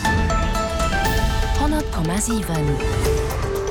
100,7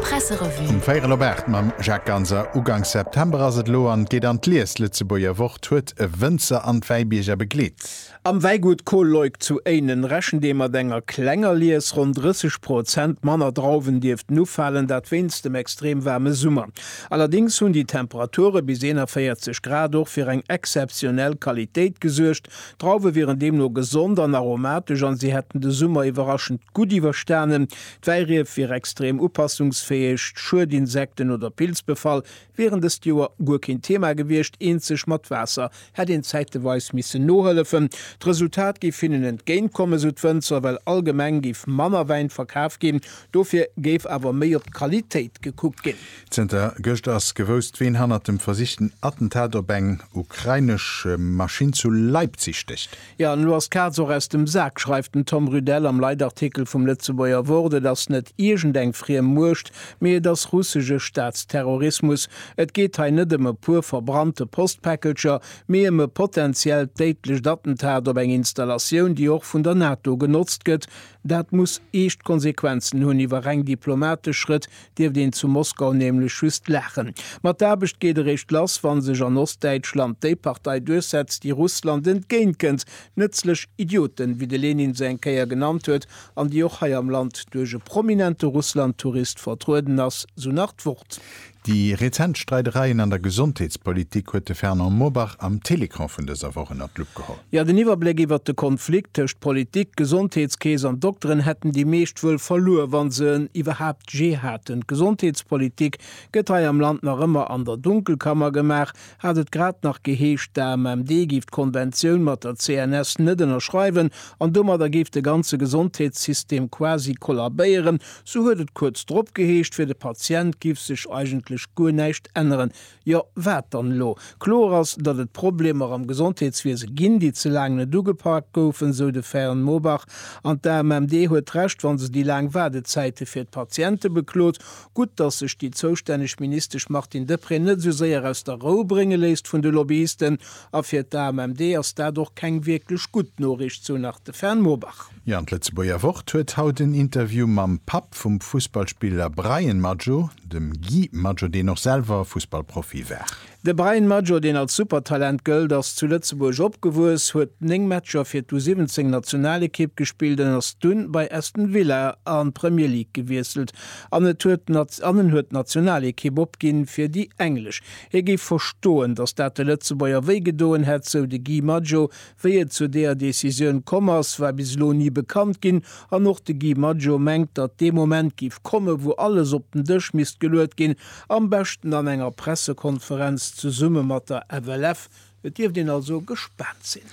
Presserevue. Um véierel op 8 mam Jacques Ganser. Ugangs September ass et elo an et geet an d'Lies. D'Lëtzebuerger Wort huet e Wënzer an d'Wäibierger begleet. Am Wäigut Col Leuck zu Éinen rechent ee mat enger klenger Lies. Ronn 30 Prozent manner Drauwen dierften ufalen, dat wéinst dem extrem waarme Summer. Allerdéngs hunn déi Temperature bis 41 Grad och fir eng exzeptionell Qualitéit gesuergt. D'Drauwe wieren deemno gesond an aromatesch an si hätten de Summer iwwerraschend gutt iwwerstanen. D'Wäirief wier extrem upassungsfäeg, Schuedinsekten oder Pilzbefall wieren dëst Joer guer keen Thema gewiescht, eenzeg mat Waasser hätt een zäiteweis missen nohëllefen. D'Resultat géif hinnen entgéint kommen, sou d'Wënzer, well allgemeng géif manner Wäin verkaf ginn, dofir géif awer méi op d'Qualitéit gekuckt ginn. Zënter gëscht ass gewousst, ween hannert dem versichten Attentat op eng ukrainesch Maschinn zu Leipzig stécht. Jo, an elo ass d'Kaz och aus dem Sak, schreift den Tom Rüdell am Leitartikel vum Lëtzebuerger Wort. Et ass net iergend eng friem Muecht, mee et ass russesche Staatsterrorismus. Et geet hei net ëm e puer verbrannte Postpäckelcher, mee ëm e potenziellt déidlecht Attentat op eng Installatioun, déi och vun der NATO genotzt gëtt. Dat muss eescht Konsequenzen hunn iwwer reng diplomatesch Schrëtt, dierft een zu Moskau nämlech just laachen. Ma d'Aarbecht geet eréischt lass, wa sech an Ostdäitschland déi Partei duerchsetzt, déi Russland entgéintkënnt, nëtzlech Idioten, wéi de Lenin se eng Kéier genannt huet, an déi och hei am Land duerch e prominente Russland-Tourist vertrueden ass, sou nach d'Wort. Déi rezent Streidereien an der Gesondheetspolitik huet de Fernand Mobach am Télécran vun dëser Woch ënner d'Lupp geholl. Jo, den Iwwerbléck iwwert de Konflikt tëscht Politik, Gesondheetskeess an Dokteren hätten déi meescht wuel verluer, wa se en iwwerhaapt jee haten. D'Gesondheetspolitik gëtt hei am Land nach ëmmer an der Dunkelkammer gemaach, hat et grad nach geheescht, d'AMMD géif d'Konventioun mat der CNS net ënnerschreiwen an domadder géif de ganze Gesondheetssystem quasi kollabéieren, sou huet et kuerz drop geheescht, fir de Patient giff sech eigentlech guer näischt änneren. Jo, wat dann elo? Kloer ass, datt et Problemer am Gesondheetswiese ginn, déi ze laang net ugepak goufen, esou de Fern Mobach. An d'AMMD huet Recht, wa se déi laang Waardezäite fir d'Patiente beklot. Gutt, datt sech déi zoustänneg Ministesch Martine Deprez net esou séier aus der Rou brénge léisst vun de Lobbyisten. A fir d'AMMD ass dat och keng wierklech gutt Noriicht, sou nach de Fern Mobach. Jo, an d'Lëtzebuerger Wort huet haut en Interview mam Papp vum Fussballspiller Bryan Maggio, dem Guy Maggio, deen och selwer Fussballprofi war. De Bryan Maggio, deen als Supertalent gëllt, ass zu Lëtzebuerg opgewuess, huet 9 Matcher fir d'U 17 Nationalekipp gespillt an ass dunn bei Aston Villa an d'Premier League gewiesselt an et huet an en huet d'Nationalekipp opginn fir déi englesch. Hie géif verstoen, datt dat de Lëtzebuerger wéigedoen hätt, sou de Guy Maggio Wéi et zu deeër Decisioun komm ass, war bis elo ni bekannt ginn an och de Guy Maggio mengt, datt dee Moment géif komme wou alles op den Dësch misst geluet ginn, am beschten an enger Pressekonferenz zesumme mat der FLF. Et dierft een also gespaant sinn.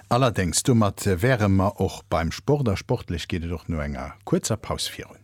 Allerdéngs, domat wäre mer och beim Sport a sportlech geet et och no enger kuerzer Paus virun.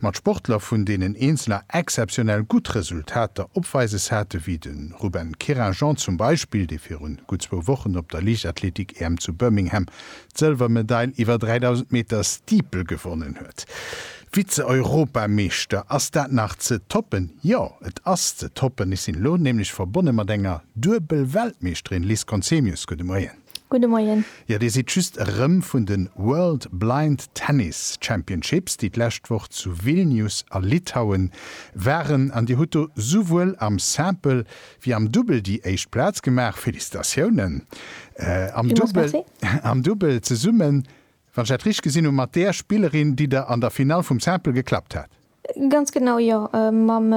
Mat Sportler vun deenen eenzeler exzeptionell gutt Resultater opweises hate wéi de Ruben Querinjean zum Beispill, dee virun gutt zwou Wochen op der Liichtathletik-EM zu Birmingham d'Sëlwermedail iwwer 3.000 Meter Steeple gewonnen huet. Vize-Europameeschter, ass dat nach ze toppen? Jo, et ass ze toppen. Ech sinn elo nämlech verbonne mat enger Duebel-Weltmeeschterin, Liz Conzemius. Gudde Moien. Gudde Moien. Jo, Dir sidd just erëm vun de World Blind Tennis Championships, déi d'lescht Woch zu Vilnius a Litauen waren, an Dir hutt do souwuel am Simple wéi am Dubbel déi éischt Plaz gemaach. Félicitatiounen! Am Dubbel zesummen Wann ech dat richteg gesinn hunn, mat där Spillerin, déi der an der Finall vum Simple geklappt hat. Ganz genau, jo, mam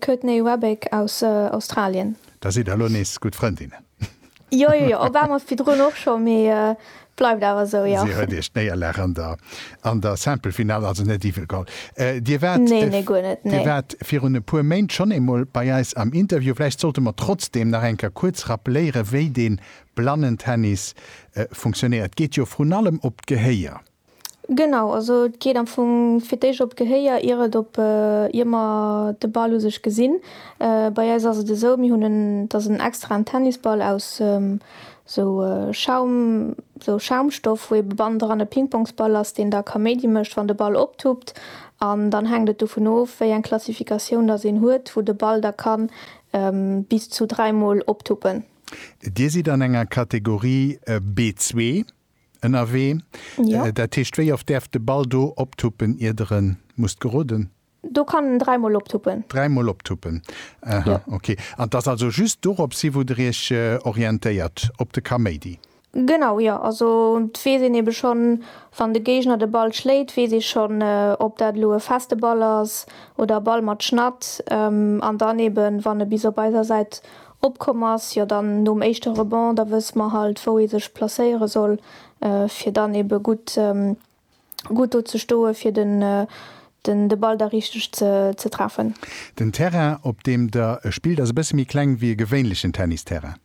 Courtney Rebick aus Australien. Da sidd der elo nees gutt Frëndinnen. Jo, jo, jo, op eemol, virdrun och scho, mee et bleift awer esou, jo. Si huet Iech d'Néierlag an der Simple-Finall also net iwwegeholl. Dir waart, nee, nee, guer net, nee. Dir waart virun e puer Méint schonn eemol bei eis am Interview. Vläicht sollte mer trotzdeem nach eng Kéier kuerz rappeléieren, wéi dee Blannentennis funktionéiert geet jo vrun allem op d'Gehéier. Genau, also et geet am Fong fir d'éischt op d'Gehéier ier et op ier mer de Ball u sech gesinn. Bei eis ass et esou, mir hunn en et ass en extraen Tennisball aus esou Schaum, esou Schaumstoff wou ebe bann dran e Pingpongsball ass deen da Kaméidi mécht wann de Ball optuppt an dann hänkt et dovun of wéi eng Klassifikatioun datt een huet wou de Ball da kann bis zu dräimol optuppen. Dir sidd an enger Kategorie B-zwee ënnerwee. Dat heescht, wéi oft däerf de Ball do optuppen, ier Der e musst geroden? Do kann en dräi Mol optuppen. Dräi Mol optuppen, aha, okay. An et ass also just dorops hi, wou Der Iech orientéiert, op de Kaméidi? Genau, jo. Also weess een eben schonn, wann de Géigner de Ball schléit, weess ee schonn ob dat elo e feste Ball ass oder e Ball mat Schnatt. An dann eben wann e bis op eiser Säit opkomm ass, jo dann nom éischte Rebond, da wësse mer halt wou ee sech placéiere soll fir dann eben gutt gutt do ze stoe fir den den de Ball da richteg ze ze treffen. Den Terrain op deem der spillt ass e bësse méi kleng wéi e gewéinlechen Tennisterrain.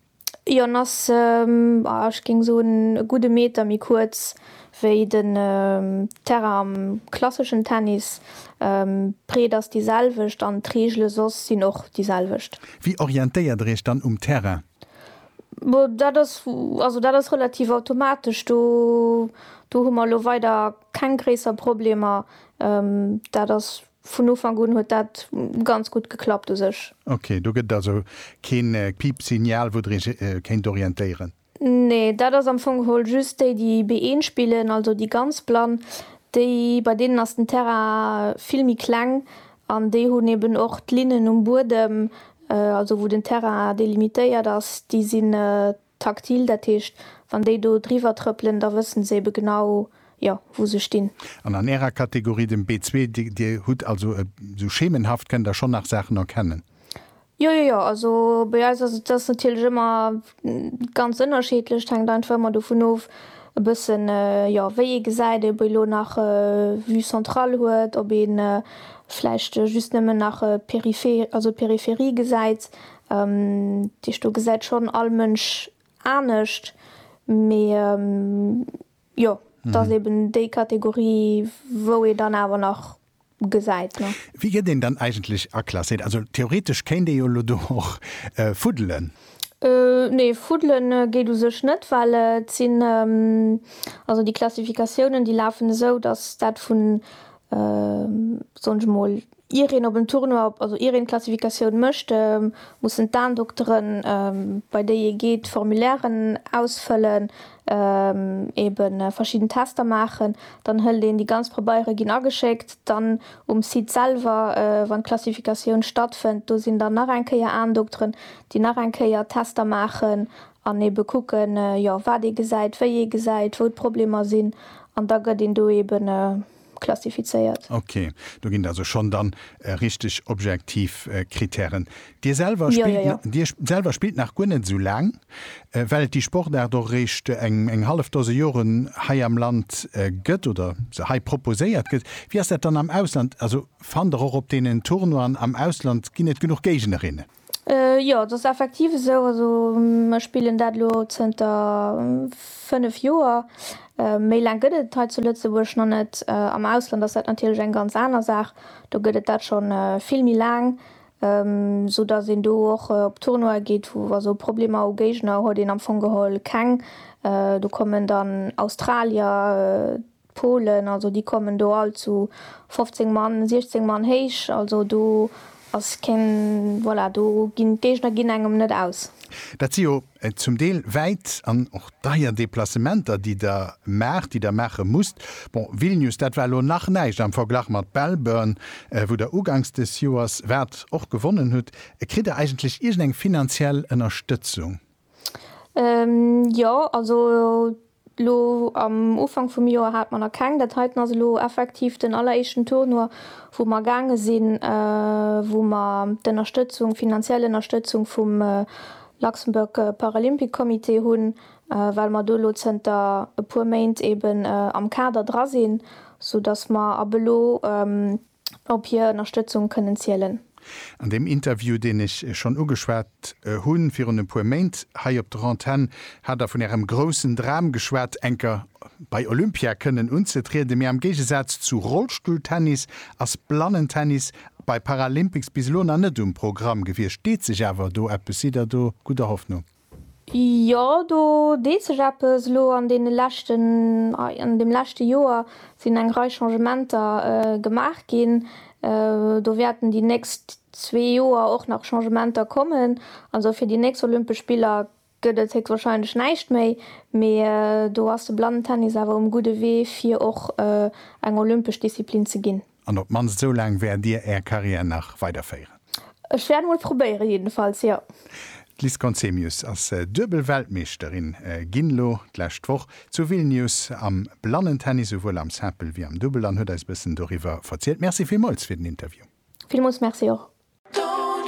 Jon ass, ah ech géing soen e gudde Meter méi kuerz wéi den Terrain am klasseschen Tennis. D'Breet ass déi selwecht an d'Reegele soss sinn och déi selwecht. Wéi orientéiert der iech dann um Terrain? Bo dat ass, also dat ass relativ automatesch, do do hu mer elo weider keng gréisser Problemer. Dat ass Vun Ufank un huet dat ganz gutt geklappt u sech. Ok, do gëtt et also kee Piipsignal, wou Der Iech kéint orientéieren? Nee, dat ass am Fong geholl just déi, déi B1 spillen, also déi ganz Blann, déi, bei deenen ass den Terrain vill méi kleng an déi hunn eben och d'Linnen um Buedem, also wou den Terrain delimitéiert ass, déi sinn Taktil, dat heescht, wann déi do driwwer trëppelen, da wëssen se ebe genau, jo, wou se stinn. An an Ärer Kategorie, dem B-zwee, Dir, Dir hutt also e, esou schemenhaft kënnt Der schonn nach Saachen erkennen? Jo, jo, jo. Also bei eis ass et, et ass natierlech ëmmer ganz ënnerschiedlech. Et hänkt einfach ëmmer dovun of, e bëssen, jo, wéi ee gesäit, ob ee elo nach Vue centrale huet, ob ee vläicht just nëmmen nach Peripherie, also d'Peripherie gesäit. Déi Sto gesäit schonn all Mënsch anescht, mee jo, et ass eben déi Kategorie, wou ee dann awer nach gesäit. Wéi gëtt een dann eigentlech aklasséiert? Also theoretesch kéint ee jo elo do och fuddelen. Nee, fuddele geet u sech net, well et sinn, also déi Klassifikatiounen, déi lafen esou, datt dat vun, soen ech emol, Ier een op en Tournoi, also ier een d'Klassifikatioun mécht, mussen d'Aendoktere bei déi ee geet Formulairen ausfëllen, ebe verschidden Tester maachen. Dann hëlt een déi ganz Probeiere ginn ageschéckt. Dann um Site selwer, wann d'Klassifikatioun stattfënnt, do sinn dann nach eng Kéier Aendokteren, déi nach eng Kéier Tester maachen an ebe kucken, jo, wat ee gesäit, wéi ee gesäit, wou d'Problemer sinn. An da gëtt een do ebe. klassifizéiert. Ok, do ginn et also schonn dann richteg objektiv Kritären. Dir selwer spillt nach guer net esou laang, well et déi Sportaart och eréischt eng hallef Dose Joren hei am Land gëtt oder se hei proposéiert gëtt. Wéi ass dat dann am Ausland? Also fannt Der och op deenen Tournoien am Ausland, ginn et genuch Géignerinnen? Jo, et ass effektiv esou. Also ech spillen dat elo zënter 5 Joer. Méi laang gëtt et hei zu Lëtzebuerg nach net. Am Ausland ass dat natierlech eng ganz aner Saach. Do gëtt et dat scho vill méi laang, sou datt een do och op Tournoie geet. Also Problemer u Géigner huet een am Fong geholl keng. Do kommen dann Australier, D'Polen, also déi kommen do all zu 15 Mann, 16 Mann héich, also do ass keen, voilà, do ginn d'Géigner ginn engem net aus. Dat si jo zum Deel wäit an och deier Deplacementer, déi Der maacht, déi Der maache musst. Bon, Vilnius, dat war elo nach näischt am Verglach mat Belburn, wou Der uganks des Joers waart, och gewonnen hutt. Kritt Der eigentlech iergendeng finanziell Ënnerstëtzung? Jo, also elo am Ufank vum Joer hate mer nach keng. Dat heiten ass elo effektiv den alleréischten Tournoi, wou mer gaange sinn, wou mer d'Ënnerstëtzung, finanziell Ënnerstëtzung vum Luxembourg Paralympic Comité hunn, well mer do elo zënter e puer Méint eeben am Kader dra sinn, soudass mer ab elo, op hir Ënnerstëtzung kënnen zielen. An deem Interview, deen ech schonn ugeschwat hu virun e puer Méint hei op der Antenn, hat Der vun Ärem groussen Dram geschwat, enker bei Olympia kënnen unzetrieden. Mee am Géigesaz zu Rollstulltennis ass Blannentennis bei Paralympics bis elo nach net um Programm gewiescht. Deet sech awer do eppes? Sidd Der do gudder Hoffnung? Jo, do deet sech eppes. Elo an deene leschten, an deem leschte Joer sinn eng Rei Changementer gemaach ginn. Do wäerten déi nächst zwee Joer och nach Changementer kommen. Also fir déi nächst Olympesch Spiller gëtt et héchstwarscheinlech näischt méi. Mee do ass de Blannentennis awer um gudde Wee, fir och eng olympesch Disziplin ze ginn. An op d'mannst esou laang wäert Dir Är Carrière nach weiderféieren? Ech wäert emol probéieren, jedenfalls, jo. D'Liz Conzemius ass duebel Weltmeeschterin ginn elo d'lescht Woch zu Vilnius am Blannentennis, esouwuel am Simple wéi am Dubbel, an huet eis e bëssen doriwwer verzielt. Merci villmools fir den Interview. Villmools Merci och.